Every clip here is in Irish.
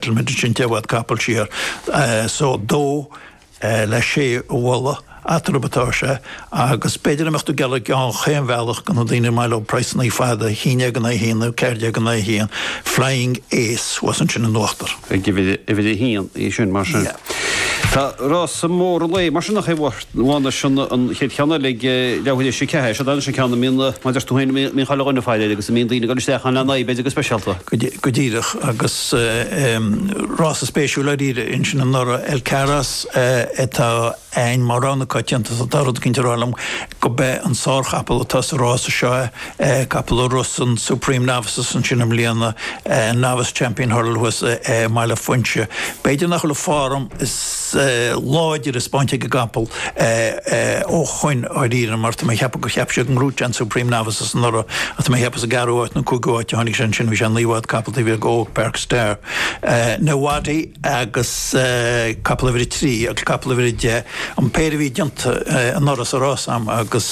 Tá muid insinte i bhfad capaill siar. So dó le sé a mholadh, eatarthu atá sé, agus b'fhéidir dá mbeadh tú ag gealladh chaon bhealach go na daoine maith leo praghsanna fada, haon déag in aghaidh a haon nó ceathair déag in aghaidh a haon, Flying Ace thuas ansin in uachtar. Ag uimhir a haon í sin mar sin. Tá rása mór an lae mar sin nach é? Luann Seon an chéad cheann eile ag leabhar a sé. Cé hé? Seod é an ceann a mbíonn, mar a deir tú féin, a mbíonn chuile dhuine ag faire air agus a mbíonn daoine ag dul isteach ann lena aghaidh, b'fhéidir go speisialta. Go díreach, agus rása spéisiúil dháiríre ansin anuraidh, El Cairos atá ann mar rogha na coitianta is tá rud éigin ag rá liom go b'é an sárchapall atá sa rása seo é, capall a rith san Supreme Novices ansin i mbliana, Novice Champion Hurdle thuas i mBaile Phúinse. B'fhéidir nach bhfuil an form is. láidre spáinte ag an gcapall ó shoin dháiríre mar tá mé ag ceapadh gur cheap siad go ngnóthódh sé an Supreme Novices anuraidh ach tá mé ag ceapadh sa gceathrú áit nó cúigiú áit a tháinig sé ansin bhí sé naoi bhfad capaill taobh thiar go Old Park Star Ndaawi agus capall uimhir a trí agus capall uimhir a deich an péire a bhí déanta anuraidh sa rás ann agus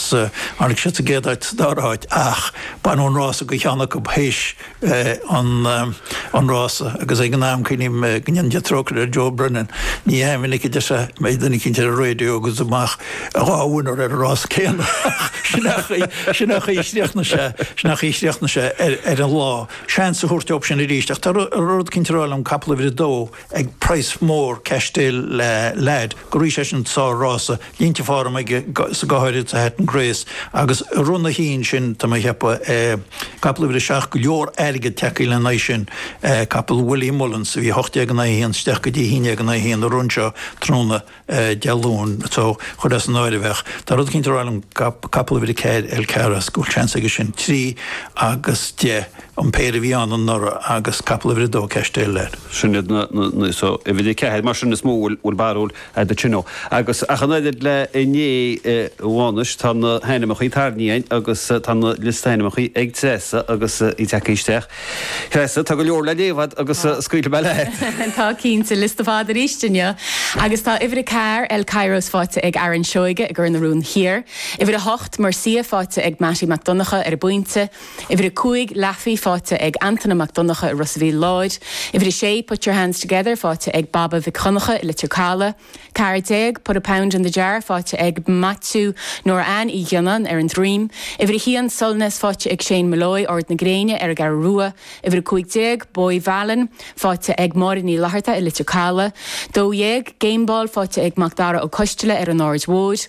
tháinig siad sa gcéad áit sa dara háit ach baineadh an rása go cheann acu théis an rása agus ag an am cuimhním go ndearna sé trócaire ar Joe Brennan. Ní go minic a deir sé mbeidh duine eicínt ar an raidió agus amach dhá winner ar an rása céanna ach sin an chaoi a chríochnaigh sé sin an chaoi a chríochnaigh sé ar an lá. Seans a thabhairt dóibh sin arís ach tá rud eicínt ag rá liom capall uimhir a dó. ag praghas mór Casheldale Lad go raibh seisean sár rása, línte form aige sa go háirid sa Hatton's Grace agus i roinn a haon sin tá mé a cheapadh capall uimhir a seacht go leor airgead tagthaí le n-aghaidh sin capall Willie Mullins a bhí ocht déag in aghaidh a haon isteach go dtí haon déag in aghaidh a haon i rith seo tráthnóna Dé Luain so, chur as an áireamh ach tá rud éicint ag rá liom capall uimhir a ceathair El Cairos go bhfuil seans aige sin. Trí agus deich an péire a bhí ann anuraidh agus capall uimhir a dó Casheldale Lad. Sin iad na, na, so uimhir a ceathair mar sin is mó bhfuil, bhfuil barúil agat sin ó. Agus ach an oiread le inné luath anois tá na hainmeachaí tarraingthe a'inn agus tá na liosta hainmeachaí ag Treasa agus í tagthaí isteach. Treasa, Tá go leor le léamh a'd agus scaoilfidh mé leat. Tá cinnte, liosta fada arís inniu. Agus tá uimhir a ceathair, El Cairos, faighte ag Aaron Seoige i gCor na Rón Thiar. Uimhir a hocht, Murcia, faighte ag Mattie Mac Donncha ar an bPointe. Uimhir a cúig, Laafi, faighte ag Antaine Mac Donncha i Ros a' Mhíl Láir. Uimhir a sé, Put Your Hands Together, faighte ag Baba Mhic Dhonncha i Leitir Calaidh. Ceathair déag, put a pound in the jar, faighte ag Maitiú Nóra Anne Uí Ghionnáin ar an Droim. Uimhir a haon, Solness, faighte ag Shane Molloy, Ard na Gréine, ar an gCeathrú Rua. Uimhir a cúig déag, Boy Mhealláin, faighte ag Máire Ní Fhlatharta i Leitir Calaidh. Dó dhéag, Gameball, faighte ag Mac Dara Ó Coisteala ar an Aird Mhóir.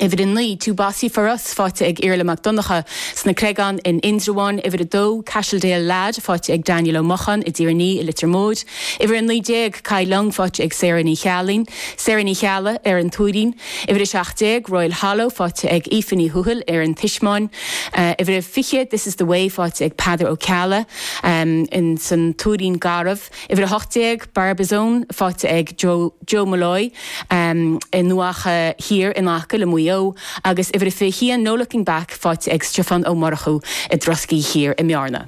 Uimhir a naoi, Too Bossy for Us, faighte ag Iarla Mac Donncha, sna Creagáin, in Indreabháin. Uimhir a dó, Casheldale Lad, faighte ag Daniel Ó Mocháin, i dTír an Fhia, i Leitir Móir. Uimhir a naoi déag, Kai Lung, faighte ag Sarah Ní Cheallaigh, Sarah Ní Cheallaigh, ar an Tuairín. Uimhir a seacht déag, Royal Hollow, faighte ag Aoife Ní Thuathail, ar an Tismeáin. Uimhir a fiche, This is the Way, faighte ag Peadar Ó Ceallaigh, in san Tuairín Garbh. Uimhir a hocht déag, Barbizon, faighte ag Joe. Joe Molloy, i nDoacha Thiar in aice le Maigh Eo agus uimhir a 21 No Looking Back faighte ag Stiofán Ó Murchú i dTroscaigh Thiar i mBearna.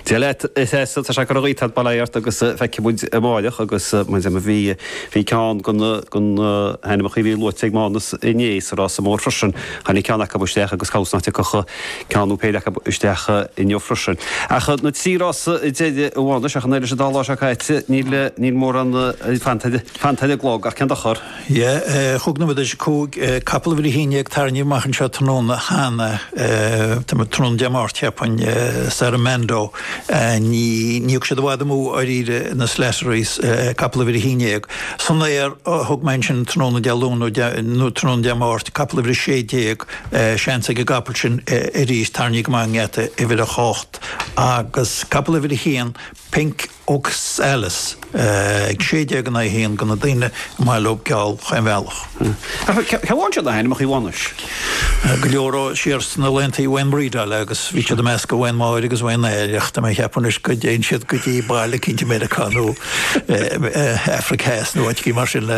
Dia leat a Thessa, tá sé ag cur gaoth thar barr ort agus feicfidh muid amáireach agus muid am a bhí, bhí ceann go na, go na hainmeachaí a bhí luaite ag Mánus inné sa rása mór freisin, tháinig ceann acu isteach agus cás na iteaca acu. ceann nó péire acu isteach inniu freisin. Ach na trí rás deiridh amháin anois, ach an oiread leis an dá lá seo caite, níl níl mórán fanta ar an gclog, ach cén dochar? Chúig nóiméad théis a cúig capall uimhir a haon déag tarraingthe amach anseo tráthnóna cheana, tráthnóna Dé Máirt, cheapfainn, Sarah Mando, ní raibh siad i bhfad amú dháiríre na Slatterys, capall uimhir a haon déag, san aer, thug mé ansin tráthnóna Dé Luain nó tráthnóna Dé Máirt, capall uimhir a sé déag, seans ag an gcapall sin arís. Tarraingthe go maith i ngeata uimhir a h-ocht agus capall uimhir a h-aon, Pink Oxalis, ag sé déag in aghaidh a h-aon go na daoine ar maith leob geall chaon bhealach. Ach cé bhfaigheann siad na h-ainmeachaí bhunúis? Go leor ó siar sna laethanta Wayne Bridle agus bhí siad i measc Wayne Máire agus Wayne Neil ach tá mé ag ceapadh anois go dtéann siad go dtí baile eicínt i Meiriceá nó Afraic Theas nó áit eicínt mar sin le